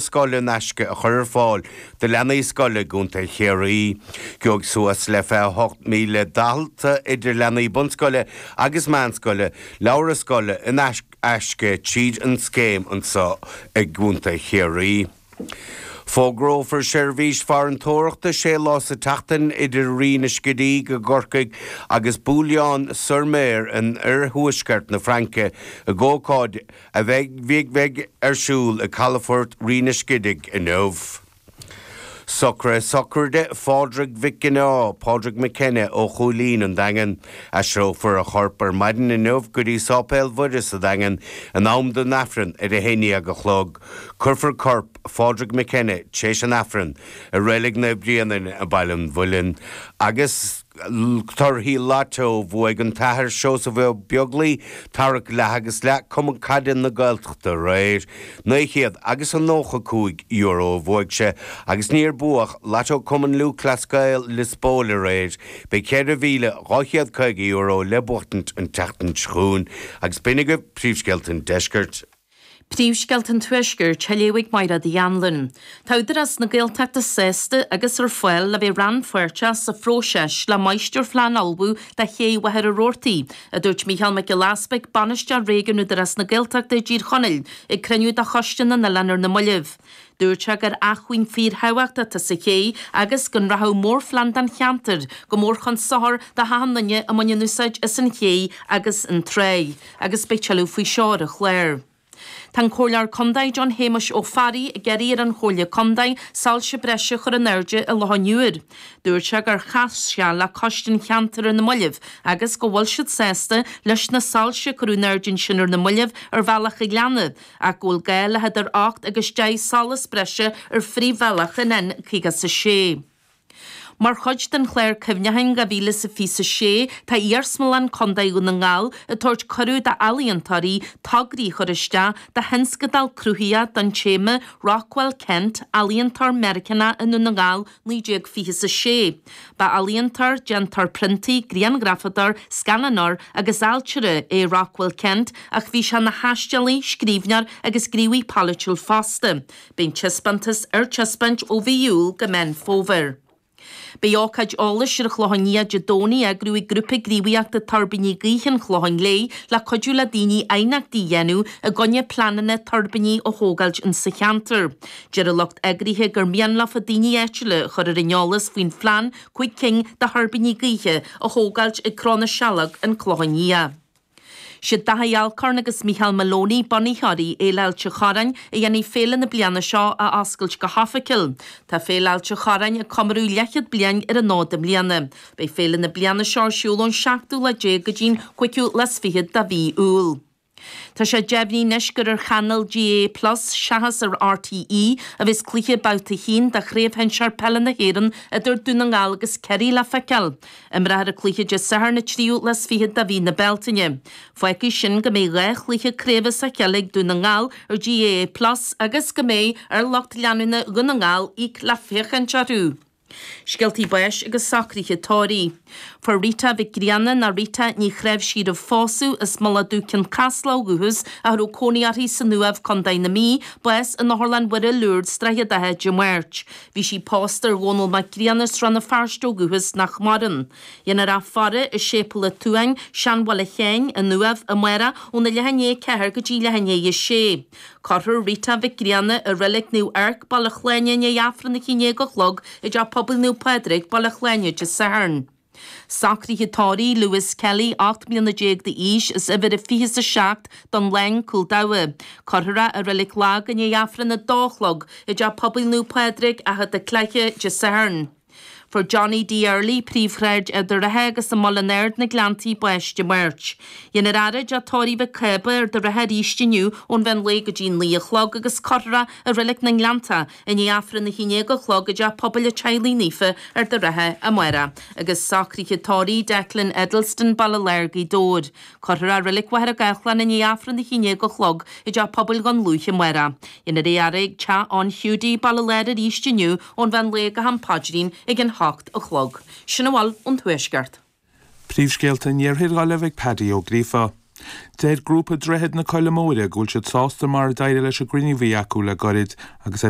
scoile in aisce a chur ar fáil do leanaí scoile i gContae Chiarraí. Gheobhaidh suas le 28,000 dalta, idir leanaí bunscoile agus meánscoile, leabhra scoile in aisce tríd an scéim anseo i gContae Chiarraí. Fógrófar seirbhís farantóireachta sé lá sa tseachtain idir Rinn an Scidígh i gCorcaigh agus Boulogne-sur-Mer in iarthuaisceart na Fraince ag ócáid a a bheidh ar siúl i gcalafort Rinn an Scidígh inniu. Socruithe sochraide Phádraig Mhic Ginneá, Pádraig McKenna, ó Chúilín, an Daingean. Aistreofar a chorp ar maidin inniu go dtí Sáipéal Mhuire sa Daingean in am don Aifreann ar a haon dhéag a chlog. Cuirfear corp Phádraig McKenna, tréis an Aifrinn, i Reilig Naomh Bréanainn i Baile an Mhuilinn agus. Torthaí Lotto, Bhuaigh an tAthair Seosamh Ó Beaglaoi, tarrac leath agus leath, Cumann Caide na Gaeltachta aréir. Naoi chéad agus a nócha cúig euro a bhuaigh sé agus níor buadh Lotto Cumann Lúthchleas Gael Lios Póil aréir. Beidh ceithre mhíle, dhá chéad caoga euro le buachtaint an tseachtain seo chugainn. Agus b'in iad príomhscéalta an deiscirt. Príomhscéalta an Tuaiscirt á léamh ag Máire Ní Anluain. Tá Údarás na Gaeltachta sásta agus ar fáil le bheith rannpháirteach sa phróiseas le máistirphlean a ullmhú do Ché Mhachaire Rabhartaí, a dúirt Micheál Mac Giolla Easbuig, Bainisteoir Réigiúnach Údarás na Gaeltachta i dTír Chonaill, ag cruinniú de Choiste na nOileán ar na mallaibh. Dúirt sé gur acmhainn fíorthábhachtach atá sa ché agus go rachadh mórphlean don cheantar go mór chun sochar do achan duine a bhaineann úsáid as an ché agus an tráigh. agus beidh tuilleadh faoi seo ar an chlár. Tá an Comhairleoir Contae John Shéamuis Ó Fearraigh ag iarraidh ar an Chomhairle Contae soilse breise a chur in airde i Loch an Iúir. Dúirt sé gur chas sé le Coiste an Cheantair ar na mallaibh agus go bhfuil siad sásta leis na soilse a cuireadh in airde ansin ar na mallaibh ar Bhealach an Ghleanna ach go bhfuil gá le eadar ocht agus deich solas breise ar phríomhbhealach an N56. Mar chuid den chlár cuimhneacháin 2026, tá Iarsmalann Contae Dhún na nGall ag tabhairt cuireadh d'ealaíontóirí tograí a chur isteach do thionscadal cruthaitheach don téama 'Rockwell Kent, Ealaíontóir Meiriceánach i nDún na nGall 1926. Ba ealaíontóir, déantóir priontaí, grianghrafadóir, scannánóir agus ailtire é Rockwell Kent ach bhí sé ina thaistealaí, scríbhneoir agus gníomhaí polaitiúil fosta. Beidh an taispeántas ar taispeáint ó mhí Iúil go Meán Fómhair. Beidh ócáid eolais ar an Chlochán Liath Dé Domhnaigh á eagrú ag Grúpa Gníomhaíochta Tuirbíní Gaoithe an Chlocháin Léith le cuidiú le daoine aighneachtaí a dhéanamh i gcoinne pleananna tuirbíní a thógáilt insa cheantar. Deir an lucht eagraithe gur mian leofa daoine áitiúla a chur ar an eolas faoin phlean cúig cinn de thuirbíní gaoithe a thógáilt ag Cró na Sealg, An Clochán Liath. Is iad Daithí Alcorn agus Micheál Moloney bunaitheoirí Fhéile Ailt an Chorráin a dhéanfaidh féile na bliana seo a oscailt go hoifigiúil. Tá Féile Ailt an Chorráin ag comóradh leithchéad bliain ar an fhód i mbliana. Beidh féile na bliana seo ar siúl ón seachtú lá déag go dtí'n cúigiú lá 's fichead de mhí Iúil. Tá sé deimhnithe anois gur ar chainéal GAA Plus seachas ar RTÉ a bheas cluiche babhta a haon de Chraobh Shinsear Peile na hÉireann idir Dún na nGall agus Ciarraí le feiceáil. Imreofar an cluiche Dé Sathairn an 23ú de mhí na Bealtaine. Fágfaidh sin go mbeidh dhá chluiche craoibhe sa pheil ag Dún na nGall ar GAA Plus agus go mbeidh ar lucht leanúna Dhún na nGall íoc le féachaint orthu. Scéaltaí báis agus socruithe tórraimh. Fuair Rita Mhic Grianna ná Rita Ní Chnáimhsí roimh phósadh as Mullach Dubh, Cionn Caslach ó dhúchas ach a raibh cónaí uirthi san Uaimh, Co. na Mí, bás in Otharlann Mhuire Lourdes, Droichead Átha, Dé Máirt. Bhí sí pósta ar Dhónall Mac Grianna, as Rann na Feirste ó dhúchas, nach maireann. Déanfar í a fhaire i Séipéal a' tSuain, Seanbhaile Sheáin, An Uaimh, amárach, óna leath i ndiaidh a 4 go dtí leath i ndiaidh a 6. Cuirfear Rita Mhic Grianna i Reilig Naomh Eirc, Baile Shláine i ndiaidh Aifreann a haon déag a chlog i dTeach Pobail Naomh Pádraig, Baile Shláine, Dé Sathairn. Socruithe tórraimh Lewis Kelly, ocht mbliana déag d'aois, as uimhir a fiche a seacht don Laing, Cúil Dabhcha. Cuirfear é i Reilig Lag i ndiaidh Aifreann a dó a chlog i dTeach Pobail Naomh Pádraig, Achadh Dé Cleithe, Dé Sathairn. Fuair Johnny D. Early, Príomhshráid Ard an Rátha agus an Muileann Aird na Gleanntaí bás Dé Máirt. Déanfar é a fhaire i dTeach Tórraimh Mhic Cába, Ard an Rátha arís inniu ón mheán lae go dtí naoi a chlog agus cuirfear é i Reilig na nGleanntach I ndiaidh Aifreann a haon déag a chlog i dTeach Pobail an Teaghlaigh Naofa Ard an Rátha amárach, agus socruithe tórraimh Declan Edleston, Baile Láir, Gaoth Dobhair. Cuirfear é i Reilig Mhachaire Gathlán i ndiaidh Aifreann a haon déag a chlog i dTeach Pobail Dhún Lúiche amárach. Déanfar é a fhaire ag Teach An Hiúdaí, Baile Láir arís inniu ón mheán lae go ham paidrín ag an hocht a chlog. Sin a bhfuil ón Tuaisceart. Príomhscéalta an Iarthair ullamh ag Paddy Ó Gríofa. Deir grúpa Droichead na Coille Móire go bhfuil siad sásta mar a d'éirigh leis an gcruinniú a bhí acu le goirid agus ar